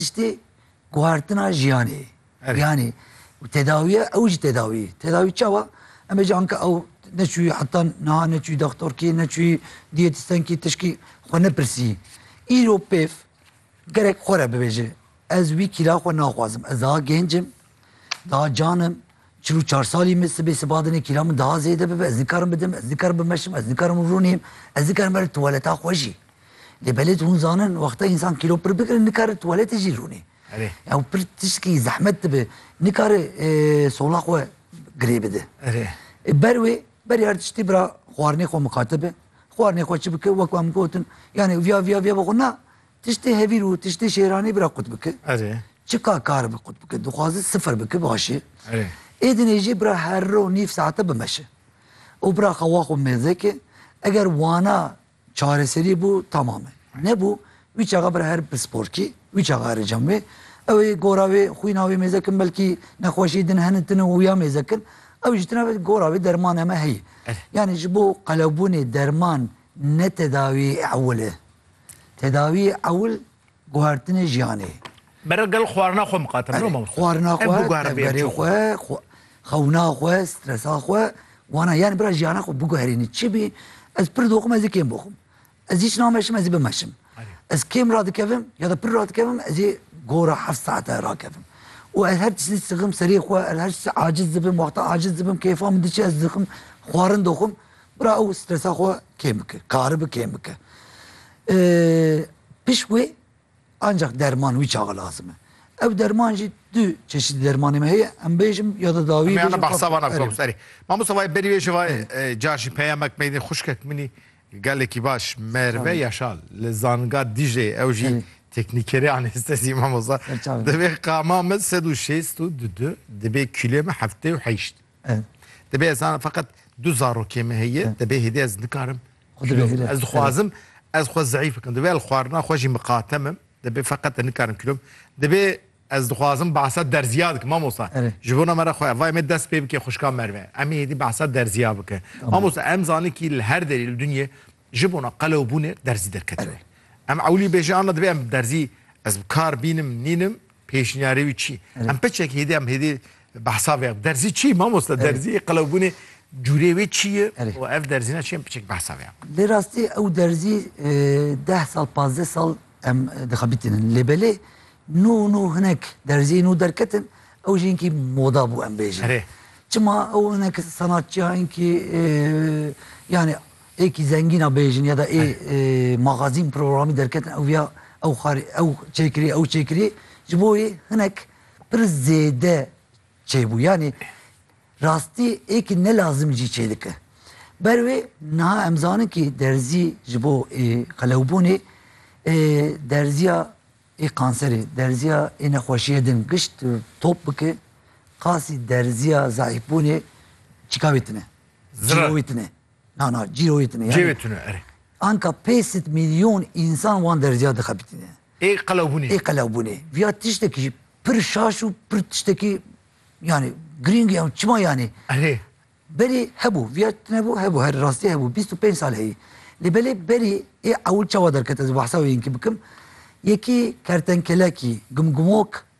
Piştî guhertina jiyanê. Jiyanê û tedawiya ew jî tedawî. Tedawî çawa? Em ê jî anka ew neçûyî heta niha neçûyî doxtorkî, neçûyî diyetistenkî tişkî xwe nepirsî. Îro pêv gerek xwe re bibêje ez wî kîla xwe naxwazim. Ez daha gêncim, daha can im, Çil û çar salî min sibê siba dinê kîla min daha zêde bibe, ez nikarim bidim, ez nikarim bimeşim, ez nikarim rûnîm, ez nikarim berim tuwaleta xwe jî. Lê belê tu hûn zanin wexta însan kîlo pir bigire nikare tuwaletê jî rûnê. Erê. Ew pir tişkî zehmet dibe. Nikare e, sola xwe girê bide. Erê. E, ber wê berê her tiştî bira xwarinê xwe miqate be. Xwarinê xwe çi bike wek em gotin. Yani viya viya viya bixwe na Tiştê hevîr û tiştê şêranê bira qut bike. Erê. Çika kar bi qut bike. Dixwaze sifir bike başê. Erê. Êdinê jî bira her ro nîv saete bimeşe. Û bira xewa xwe mêzeke eger wana çareserî bû tamam e. Nebû wî çaxa bira her pisporkî wî çaxa erê cem wê. Ew ê gora wê xwîna wê mêze kin belkî nexweşî din hene tune û ya mêze kin. Ew jî tune gora wê derman heme heye. Erê. Yanî ji bo qelewbûnê derman Ne tedawî ewil e. Tedawî ewil guhertinê jiyanê ye. Bera gel xwarina xwe miqate miro mam. Xwarina xwe, tevgerê xwe, xewna xwe, stresa xwe, wana yani bira jiyana xwe biguherînî. Çi bî ez pir doxim ez ê kêm bixwim. Ez hiç nameşim ez ê bimeşim. Ez kêm radikevim ya da pir radikevim ez ê gora heft saete rakevim. Û ez her tiştî sixim serê xwe, ez her tiştî aciz dibim, wexta aciz dibim, kêfa min diçe ez dixim xwarin doxim. Bira ew stresa xwe kêm bike, karibi kêm bike. Pişt wê ancak derman wî çawa lazim e. Ew derman jî du çeşîdî dermanê me heye, em bêjim ya da dawî bêjim. Em behsa wan bikim serî. Mamosta vayê berî wê jî vayê car jî peyamek meydin xuşkek min î gelekî baş Merve Yaşar li Zanga Dîcleyê ew jî teknîkerê anestezî mamosta. Divê qama min sed û şêst û du du divê kîloyê min heftê û heşt. Divê ez zanim feqet du zarokê me heye divê hêdî ez nikarim ez dixwazim ez xwe zeîf bikim divê el xwarina xwe jî miqatemim divê feqet nikarim kilo divê ez dixwazim behsa derziya dikim mamosta ji bona me re xwe evay me dest pê bike xuşka merve em hêdî behsa derziya bike mamosta em zanin kî li her derî li dunyê ji bona qelew bûnê derzî derketine em ewlî bêje ana divê em derzî ez bi kar bînim nînim Pêşniyarê wî çi? Em piçek hêdî em hêdî behsa vê derzî çi mamosta derzî qelewbûnê cûrê wê çi ye û ev derzîna çi em piçek behsa vê. Lê rastî ew derzî e, deh sal pazdeh sal em e, dixebitînin lê belê nû nû hinek derzî nû derketin ew jî hinkî moda bû em bêjin. Çima ew hinek sanatçiya hinkî e, yani Êkî zengîn a bêjin ya da ê magazîn programî derketin ew viya ew xarê ew çêkirî ew çêkirî ji bo wê hinek pir zêde çêbû yanî rastî êkî ne lazim jî çêdike. Ber wê niha em zanin kî derzî ji bo ê qelewbûnê ê derzîya ê kanserê derzîya ê nexweşîye din gişt top bike qasî derzîya zayîfbûnê çîka wê tine. Zira wê tine. Na na cîroyê tune yani. Cêwê tune erê. Anka pêsit milyon însan wan derziya dixebitîne. Ê qelewbûnê. Ê qelewbûnê. Viya tiştekî jî pir şaş û pir tiştekî yani girîng ya û çima yani. Erê. Berî hebû viya tunebû hebû her rastî hebû bîst û pênc sal heyî. Lê belê berî ê ewil çawa derket ez behsa wê yînkî bikim. Yekî kertenkelekî gimgimok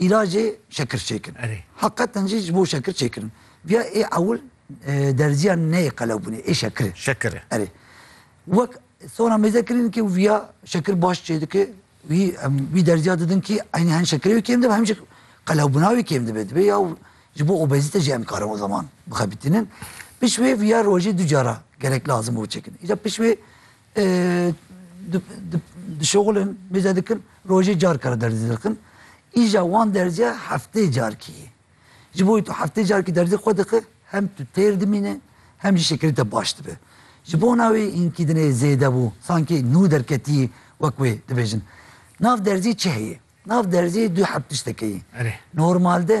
Îlacê şekir çêkin. Heqeten jî ji bo şekir çêkirin. Viya ê ewil derziya neyê qelewbûnê ê şekirê. Şekirê. Erê. Wek sona mêze kirîn kî viya şekir baş çê dike wî em wî derziya didin kî eynî hem şekirê wî kêm dibe hem jî qelewbûna wî kêm dibe dibe ya ji bo obezîte jî em karin o zaman bixebitînin. Pişt wê viya rojê du cara gerek lazim û çêkin. Îja pişt wê dişoxulin mêze dikin rojê car kare derzî dirkin îja wan derziya heftê carkî yê ji bo wî tu heftê carkî derzî xwe dixi hem tu têr dimîne hem jî şekilê te baş dibe ji bona wî înkî dinê zêde bû sankî nû derketî wek wê dibêjin nav derzî çi heye nav derzî du heb tiştekê yê normalde